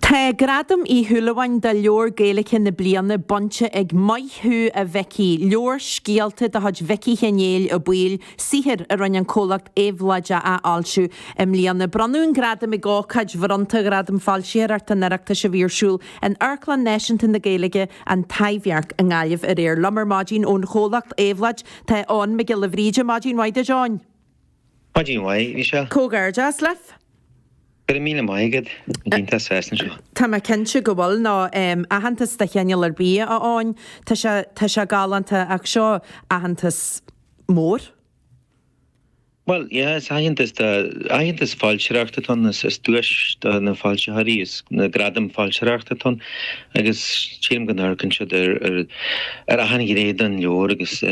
Tá Gradam Uí Shúilleabháin do Leabhar Gaeilge na Bliana bainte ag Maith Thú a Mhicí, leabhar scéalta de chuid Mhicí Sheáin Néill Ó Baoill, saothar a rinne an comhlacht Éabhlóid a athfhoilsiú i mbliana. Bronnadh an gradam ag ócáid bhronnta Ghradam Foilsitheoireachta an Oireachtais a bhí ar siúl in Amharclann Náisiúnta na Gaeilge, An Taibhdhearc i nGaillimh aréir. Liom ar maidin ón chomhlacht Éabhlóid tá Eoghan Mac Giolla Bhríde. Maidin mhaith duit, a Eoghain. Maidin mhaith, Michelle. Comhghairdeas libh! Go raibh míle maith agat an dínta as freisin seo. Tá mé cinnte go bhfuil, nó aitheantas de chineál ar bith a Eoghain, tá sé, tá sé galánta ach seo aitheantas mór. Bhuel, yeah, is aitheantas de, aitheantas foilsitheoireachta atá ann, is duais do na foilsitheoirí, is na gradaim foilsitheoireachta atá ann agus sílim go n-amharcann siad ar, ar, ar achan ghné den leabhar agus.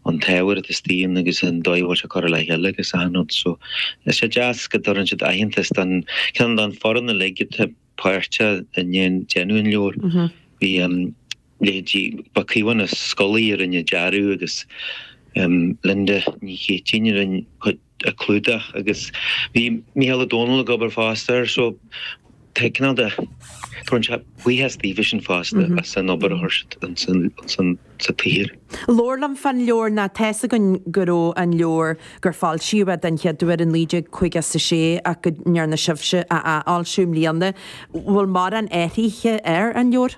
an t-ábhar atá istigh ann agus an dóigh a bhfuil sé curtha le chéile agus achan rud. So tá sé deas go dtabharann siad aitheantas don ceann don foireann uilig atá páirteach i ndéan déanamh an leabhair. Bhí an leithéidí Ba Caomhán Ó Scolaí a rinne an dearadh agus Linda Ní Chéitínn a rinne cuid an clúdach agus bhí Micheál Ó Domhnaill ag obair fosta air so tá cineál de tá sé buíochas daofa sin fosta as an obair a chuir siad insa tsaothar. Labhair liom fán leabhar nó tá's againn go raibh an leabhar gur foilsíodh é den chéad uair in 1956 ach go ndearna sibhse a athfhoilsiú i mbliana. Bhfuil mórán athraithe ar an leabhar?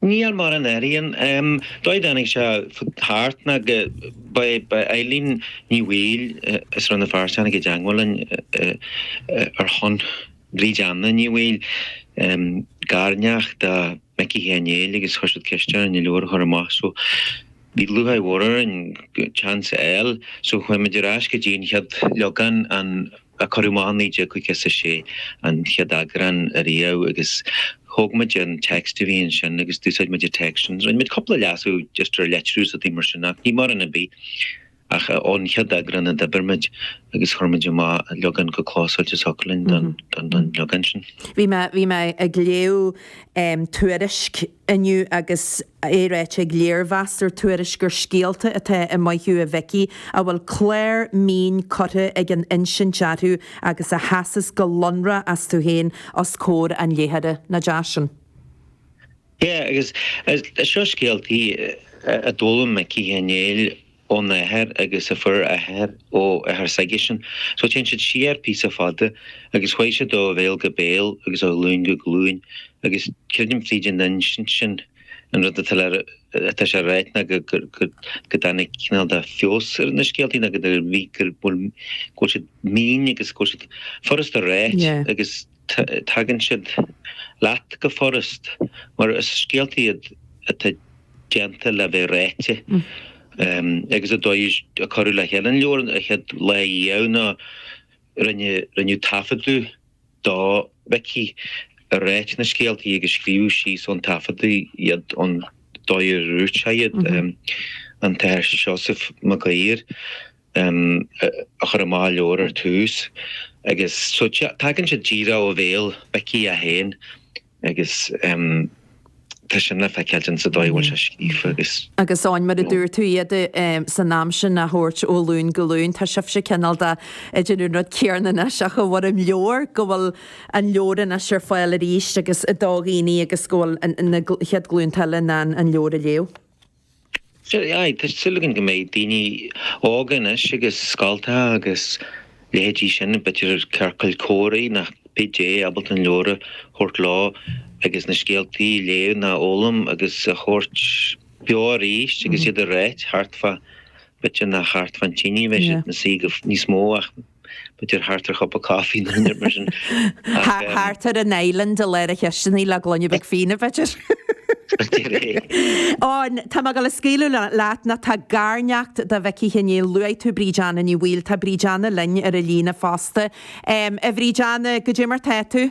Níl mórán i ndáiríre. An dóigh a dtáinig sé thart ná go ba é Eileen Ní Bhaoill as Rann na Feirste a tháinig i dteangmháil linn ar shon Bhríd Anna Ní Bhaoill, garneacht do Mhicí Sheáin Néill agus chuir siad ceist orainn an leabhar a chur amach. Bhí lúcháir mhór orainn an seans a fháil, so chuaigh muid ar ais go dtí an chéad leagan an a cuireadh amach i 1956, an chéad eagrán ariamh agus thóg muid an text a bhí ansin agus d'úsáid muid an text sin. Rinne muid cúpla leasú just ar litriú is rudaí mar sin ach ní mórán ar bith. Ach ón chéad eagrán a d'oibir muid agus chuir muid amach leagan chomh clósáilte is a thiocfadh linn don leagan sin. Bhí mé, bhí mé ag léamh Tuairisc inniu agus é ráite ag léirmheastóir Tuairisc gur scéalta atá i Maith Thú a Mhicí a bhfuil clár mín curtha ag an insint orthu agus a sheasas go lonrach astu féin os comhair an léitheora. Nach deas sin? Yeah, agus seo scéaltaí a d'fhoghlaim Micí Sheáin Néill óna athair agus a fuair a athair ó athair s'aigesean. So téann siad siar píosa fada agus chuaigh siad ó bhéal go béal agus ó ghlúin go glúin agus creidim fríd an insint sin an rud atá le, atá sé ráite ná go, go dtáinig cineál de feabhas ar na scéaltaí ná go, go bhfuil siad mín agus go bhfuil siad furasta ráite agus. tagann siad leat go furast mar is scéalta iad atá déanta le bheith ráite agus an dóigh a cuireadh le chéile an leabhar an chéad lá riamh ná rinneadh taifeadadh do Mhicí ag ráit na scéaltaí agus scríobhadh síos ón taifeadadh iad an dóigh ar dhúirt sé iad. An tAthair Seosamh Mag Uidhir. um a chuir amach an leabhar ar tús agus so tagann siad díreach ó bhéal Mhicí é féin agus um tá sin le feiceáil ansa dóigh a bhfuil sé scríofa agus. Agus Áine mar a dúirt tú iad um san am sin a thabhairt ó ghlúin go glúin tá sibhse cineál de ag déanamh an rud céanna anois ach i bhfoirm leabhair go bhfuil an leabhar anois ar fáil arís agus do dhaoine agus go bhfuil na chéad ghlúnta eile in ann an leabhar a léamh. Aye, tá súil againn go mbeidh daoine óga anois agus scoltacha agus leithéidí sin, b'fhéidir ciorcail comhráidh ná cibé, ábalta an leabhar a thabhairt leo agus na scéaltaí a léamh ná a fhoghlaim agus a thabhairt beo arís agus iad a ráit thart fá b'fhéidir nach thart fán tine a bheidh siad ina suí níos mó ach b'fhéidir thart ar chupa caife nó inar mar sin ach eh. Thart ar an island i lár na cisteanaí le gloine beag fíona b'fhéidir. Áine, tá mé ag gabháil a scaoileadh leat ná tá garneacht do Mhicí Sheáin Néill. Luaigh tú Bríd Anna Ní Bhaoill. Tá Bríd Anna linn ar an líne fosta. Um, a Bhríd Anna, cad é mar tá tú?